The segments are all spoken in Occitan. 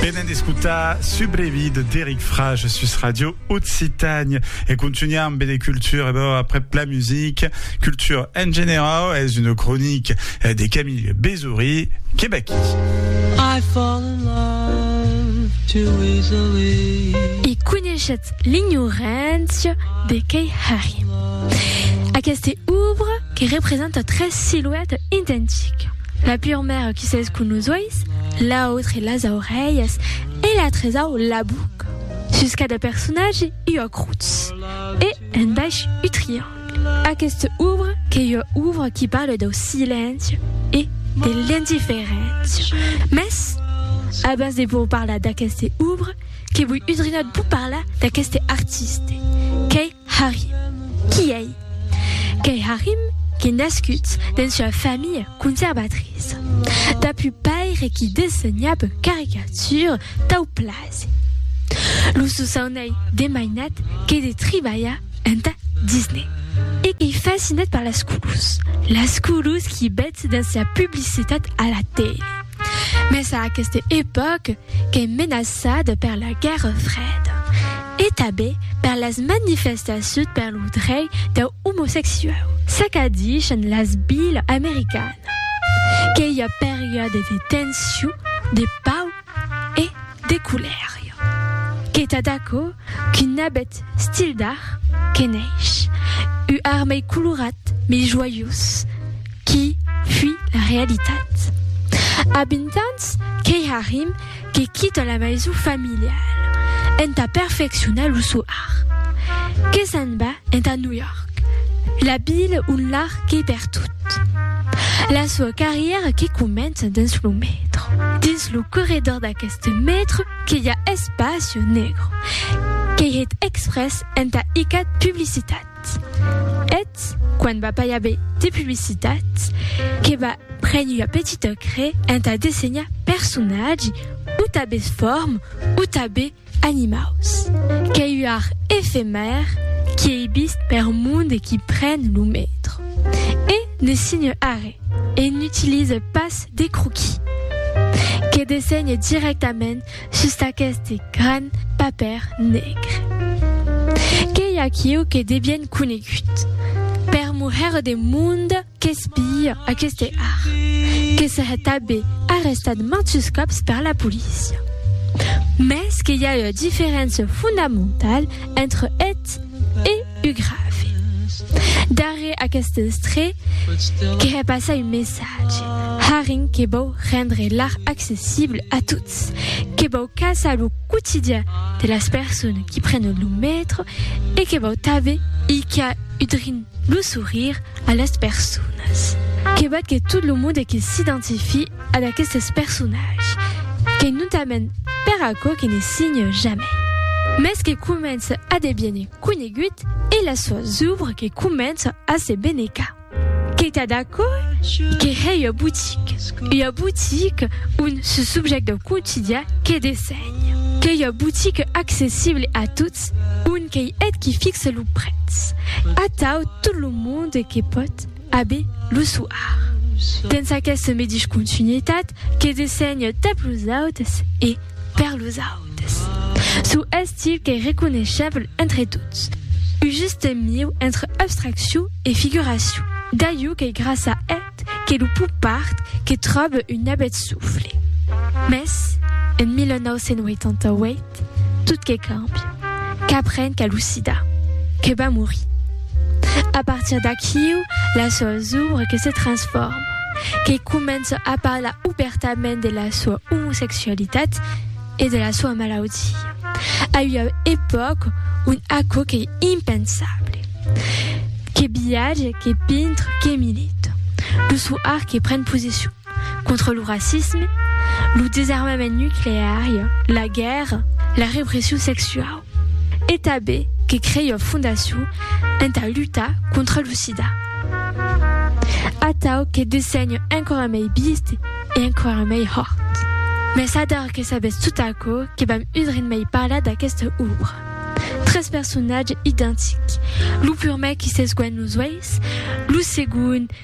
Venen d'escutar Subrevi de Deric Frage sus Radio Occitània e contunhar amb de cultura bon, après la musique, culture en general, es una cronique de Camille Bézoury que baquí. I fall in love too easily. E coneishetz l'ignorància de Kei Harry. Aquesta obra que representa tres siluetas identiques. La pur maire qui s'es cun los uèis, l'autre las aurelhas e la tresau la buca. Sus cada personatge ua crutz e un baish u triangle. Aquesta obra qu'es ua obra qui parle dau silenci e de l'indiferéncia. Mès, abans de vos parlar d'aquesta obra, que voi udrinat vos parlar d'aqueste artiste, qu'ei Harry. Qui ei? Qu'ei Harry qu'ei nascut dens ua familha conservatriça. Dab un paire qui dessenhab caricatures tau plasi. Lo sosaun ei de mainat que de tribalhar enta Disney. E qu'ei fascinat per las colors. Las colors qui bètz dens la publicitat a la tele. Mès a aquesta epòca, qu'es menaçada per la guèrra freda e tanben per las manifestacions per lo drech deu omosexuau. Çaqu'a dichan las vilas americanas que i a periòdes de tension, de pau e de colèria. Queta d'aquò? Qu'un nabet stil d'ar que neish, u ar mei colorat, mei joiós qui fui la realitat. A vint ans qu'ei Harim que quita la maison familiale enta perfeccionar lo so ar, que s'en va enta New York, la vila on l'ar qu'ei pertot. La soa carrièra que comença dins lo metro, dins lo corredor d'aqueste metro, que i a espacio negro qu'ei hèt exprès entà icat publicitat. Eth, quan va pas i aver de publicitat, que va prene ua petita crè entà dessenhar personatgi, o tabes form, o tabe animaus. Qu'ei ua art efemèr qui ei vist per monde qui pren lo metro. E ne signa arre. E n'utilise pas de croquis. Que dessenhe dirèctament sus aqueste gran papèr negre. Qu'ei aquiu que devien conegut per moher de monde qu'espia aqueste art, que serè tabé arrestat mantus còps per la polícia. Mès que i a ua diferéncia fondamentala entre eth e. Uu grave. Darrèr aqueste estrè, que hè passar un messatge. Haring que vòu rendre l'art accessible a tots, que vòu caçar lo quotidian de las persones qui prenen lo metro e que vòu tanben icar udrin lo sourire a las personas. Que vòt que tot lo monde que s'identifie ad aquestes personatges, que notament per aquò que ne signe jamai, mès que comence a deviene conegut e la sua zubra que comença a se benecar. Que tà d'aquò que hè ua botica, ua botica ont se subjècta au quotidian que dessenha. Qu'ei ua botica accessible a tots, ont qu'ei eth qui fixa lo prètz. Atau tot lo monde que pòt. Abe lo soir. Dens aqueste medish continuitat que dessenhe tap los autes e per los autes. Sou estil qu'ei reconeishèble entre tots. U juste mieu entre abstracciu e figuraciu. Daiu qu'ei grassa eth que lo pop art que tròbe un abet soufle. Mès, en 1988, Tot que cambi, qu'apren qu'a lo sida, que va morir. A partir d'aquiu, la soa zòbre que se transforma, que comença a parlar obèrtament de la soa omosexualitat e de la soa malaudia, a ua epòca ont aquò qu'ei impensable. Que viatge, que pintre, que milita. Lo soir que pren posicion. contra lo racisme, lo desarmament nucleari, la guèrra, la repression sexuau e tanben que crei ua fondacion entà lutar contra lo sida. Atau que dessenhe enquara mei bist e enquara mei hòrt. Mès ador que sabetz tot aquò que vam udren mei parlar d'aquesta òbra. Tres personatges identics, lo purmèr qui s'esguènh los uèis, lo segond,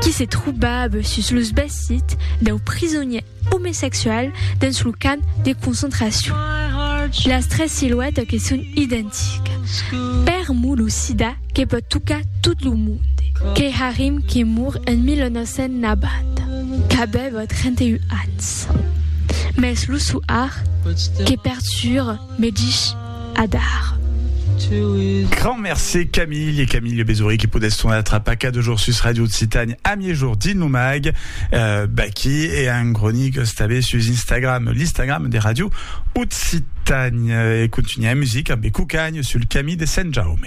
qui se trobava sus los vesits dau prisonièr omesexual dens lo camp de concentracion. Las tres siluètas que son identicas. Per mo lo sida que pòt tocar tot lo monde. Keharim que mor en 1990, qu'avèva 31 ans. Mès lo soar que pertura. Me dich adar. Grand mercé Camille et Camille Le Bézoury qui poudès son atra paca de jour sus Radio Occitane a mi-jour dins lo mag euh, Backy et un groni que stabé sus Instagram, l'Instagram de Radio Occitane. Et continuer la musique avec Coucagne sur le Camille de Saint-Jaume.